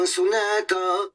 Sonata.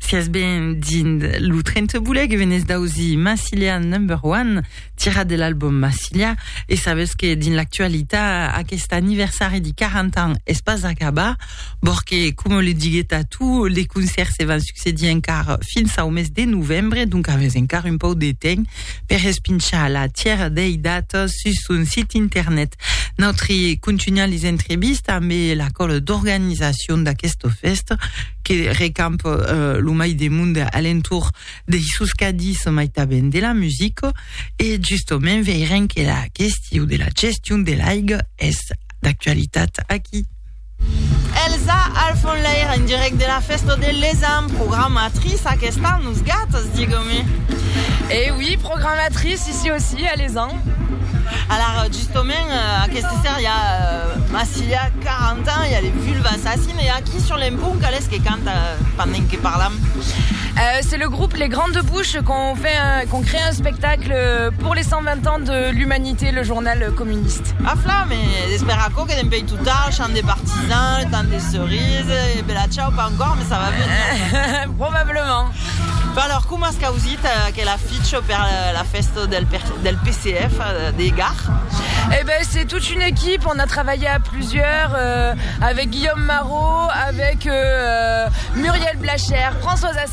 Si es ben dins lo trenteboule que venés d'ausir Massilia Number One, tirat de l'album Massilia, e sabés que dins l'actualitat aqueste anniversari de 40 ans es pas acabat, bòr que, coma le diguet a tu, les concèrts se van succedir encara fins au mes de novembre, donc avés encara un pauc de temps, per espinchar la tièra dei datas sus son sit internet. Nautri contunham les entrevistas ambe la còla d'organizacion d'aquesta fèsta que recampa lo mai de monde a l'entorn dei sos cadis mai tanben de la musica e justament veirem que la question de la gestion de l'aiga es d'actualitat aquí. Elsa al fon lair en direct de la festa de l'Esan, programatrice aquesta nos gatas digome. Eh oui programatrice ici aussi a l'Esan. Alara justement aquesta seria Massilia 40 ans ya les Vulves Assassines e aquí sur l'empont qual es que canta pendent que parlam? Eh c'est le groupe les grandes bouches qu'ont fait un qu'ont crée un spectacle pour les 120 ans de l'humanité le journal communiste. A flam e espèra aquò que dempèi Total, chant des partisans, le temps des cerises, e bela ciau, pas encore, mais ça va venir. Probablement. Bon, alors, coma as causit aquel affiche per la festa del del PCF de Gard? Eh ben, c'est toute une équipe, on a travaillé à plusieurs, euh, avec Guillaume Marot, avec euh, Muriel Blacher, Françoise As.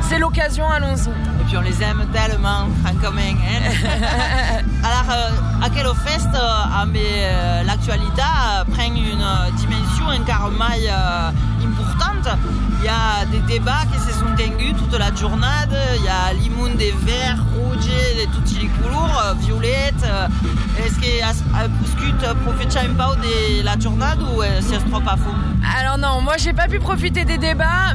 C'est l'occasion allons-y. Et puis on les aime tellement francament hein alors aquela fèsta amb l'actualitat pren una dimension encara mai importanta i a de debats que se son tenguts tota la jornada i a l'immun de verd rouge de totes li colors violet es que as poscut profechar un pauc de la jornada o sies tròp a fon? Alors non moi j'ai pas pu profiter des debats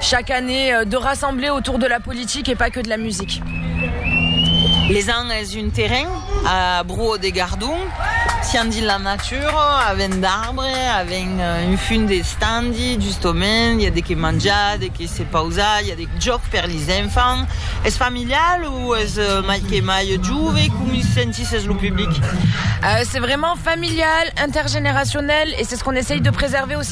Chaque année de rassembler autour de la politique et pas que de la musique. Les ans es un terrain a Bruò de Gardon, sian dins la natura, avèn d'arbre, avèn un fum de standi, justomènt, i a de que manjar, de que se pausar, i a de jòc per lis enfants. Es familial o es mai que mai jove? Comi sentisses lo public? C'est vraiment familial, intergeneracionèl, e c'est ce qu'on essaye de préserver aussi.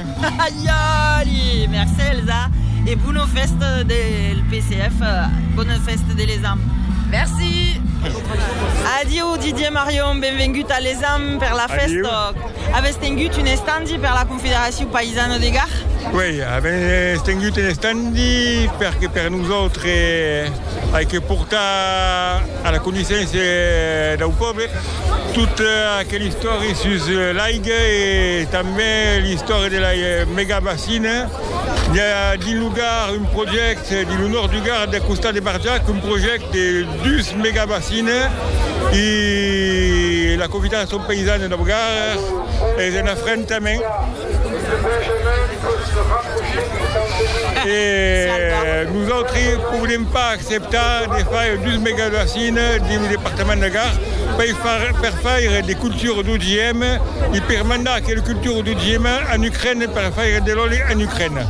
Aiòli! Mercé Elsa e bona fèsta del PCF, bona fèsta de l'ESAM. Merci! Adieu Didier Marion, benvengut a l'ESAM per la fèsta. Avètz tengut un estandi per la Confederacion Païsana de Gar? Uèi, avètz tengut un estandi perque per nosautres ai que portar a la coneissença dau pòble, Tota aquela istòria sus l'aiga e tanben l'istòria de la megabacina. I a dins lo Gard un projècte, dins lo nòrd du Gard, al costat de Barjac, un projècte de dus megabacina e la Confederacion Paysane dau Gard es en afrentament. E nosautres podem pas acceptar de faire dus megabassines dins lo departament de Gard per faire de cultura d'OGM e per mandar aquela cultura d'OGM en Ucraina per faire de l'òli en Ucraina.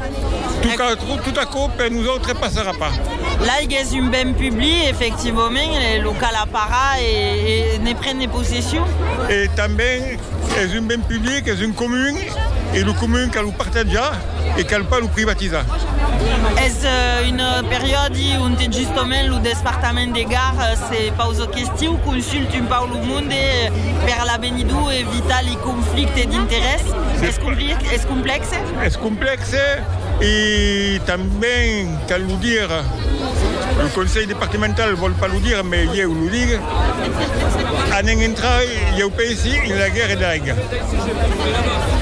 Tot aquò per nosautres passarà pas. L'aiga es un ben public, efectivament, e lo cal aparar e ne prendre possession. Es un ben public, es un comun, e lo comun cal lo partatjar e cal pas lo privatizar. Es un periòdi onte justament lo despartament de Gard se pausa questiu, consulta un pauc lo monde per l'avenidor e evitar li conflictes d'interès. Es complèxe? Es complèxe e tanben cal lo dire, lo conselh departemental vòl pas lo dire, mai ieu lo digue. Anèm intrar, ieu pensi, en la guèrra de l'aiga.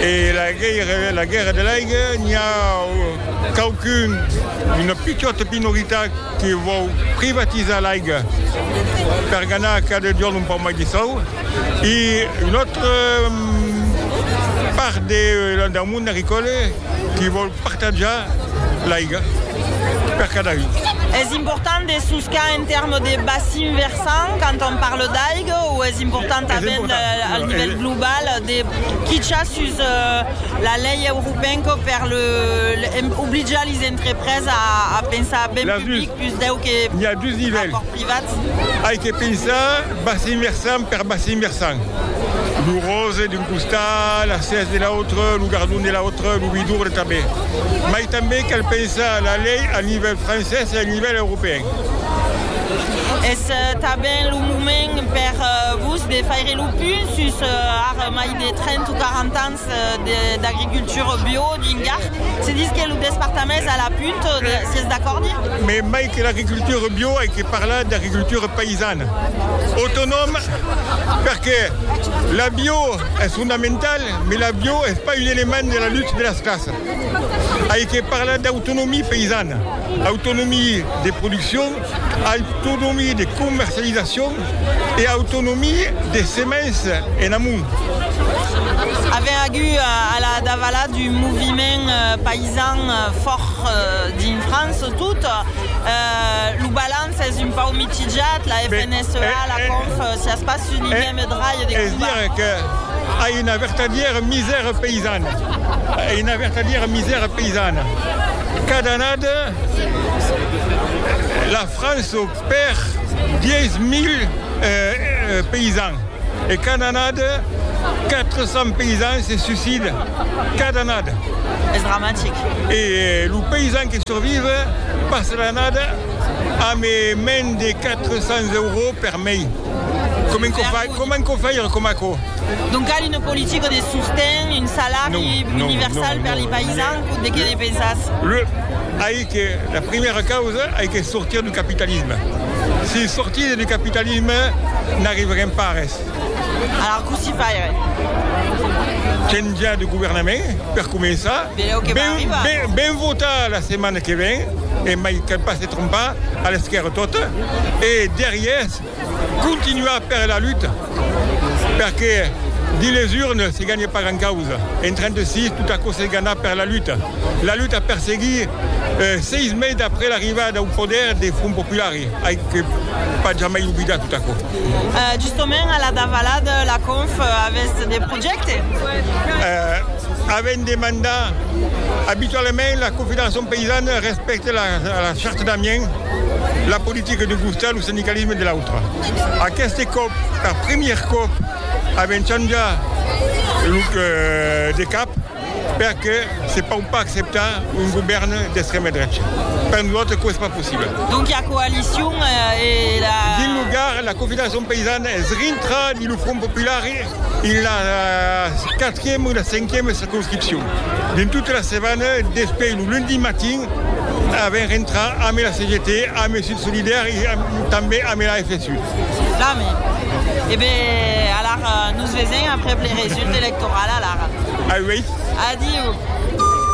E la guèrra de l'aiga, n'i a quauqu'un, una pichòta minoritat que vòu privatizar l'aiga per ganar cada jorn un pauc mai de sòu e una autra part deu mond agricòla que vòu Partajar l'aiga per cada un. Es important de soscar en tèrmes de bacin versant quand on parle d'aiga o es important tanben al nivèl global de quichar sus la lei europenca per oblijar les entrepreses a pensar ben public pus deu que a còrt privau? Privats. Ai que pensar bassin versant per bassin versant, lo rose d'un costat, la sèrs de l'autre, lo gardon de l'autre, lo vidurre tanben. Mai tanben cal pensar la lei a nivèl francés e a nivèl europèen. Es tanben lo moment per vos de faire lo punt sus ara mai de 30 o 40 ans d'agricultura bio dins Gard. Se ditz que lo despartament es a la punt, sies d'acòrd? Mai mai que l'agricultura bio ai que parlar d'agricultura païsana, autonòma, perque la bio es fondamentala, mai la bio es pas un element de la lutte de las classas. Ai que parlar d'autonomia païsana, autonomia de produccion, Autonomie de comercializacion e autonomie de semens en amont. Avèm agut a la davala d'un moviment paisan fòrt dins França tot. Lo balanç es un pauc mitjat, la FNSEA, la Conf, siás pas un idiome drai de combatre. Es dire que ai una vertadièra misèra paisana. Ai una vertadièra misèra paisana. Cada annada. La França perd 10.000 paysans e cada annada 400 paysans se suiciden, cada annada. Es dramatic. E lo paysan que survive passa l'annada amb mens de 400 euros per mes. Comment quò fai, comment quò fai era coma aquò? Donc cal una politica de sosten, un salari universal per li paisans, de qué ne pensas? Le, ai que, la primera causa ai que sortir du capitalisme. Si sortide du capitalisme n'arriverem pas a res. Alar cossí faire? Chanjar de governament per començar. Velèu que va arribar. Ben, ben, ben votar la setmana que ven e mai cal pas Trompar a l'esquèrra tota e derrièrs continuar per la luta, perque dins les urnes se ganhe pas gran causa, en 36 tot aquò s'es ganhat per la luta, la luta per seguir 6 meis d'après l'arribada au poder de Front Popular, ai que pas jamai oblidar tot aquò. Justament a la davalada la Conf avèsse de. Avèm demandat abitualament la Confederacion paysane respècte la Charte d'Amiens, la politica d'un costat, lo sindicalisme de l'autre. Aqueste còp, per primièr còp, avèm chanjat de cap. Perque se pòu pas acceptar un govèrn d'extrèma drecha. Per nosautres aquò es pas possible. Donc i a coalicion e la. Dins lo Gard, la Confederacion paysana es rintra dins lo Front popular en la quatrième o la cinquième circonscripcion. Dins tota la setmana, despè lo lundi matin, avèm rentrat ambe la CGT, ambe Sud Solidaire e tanben ambe la FSU. Damb. E be, alara nos vesem aprèp le result electoral, alara. Auèi. Adiu.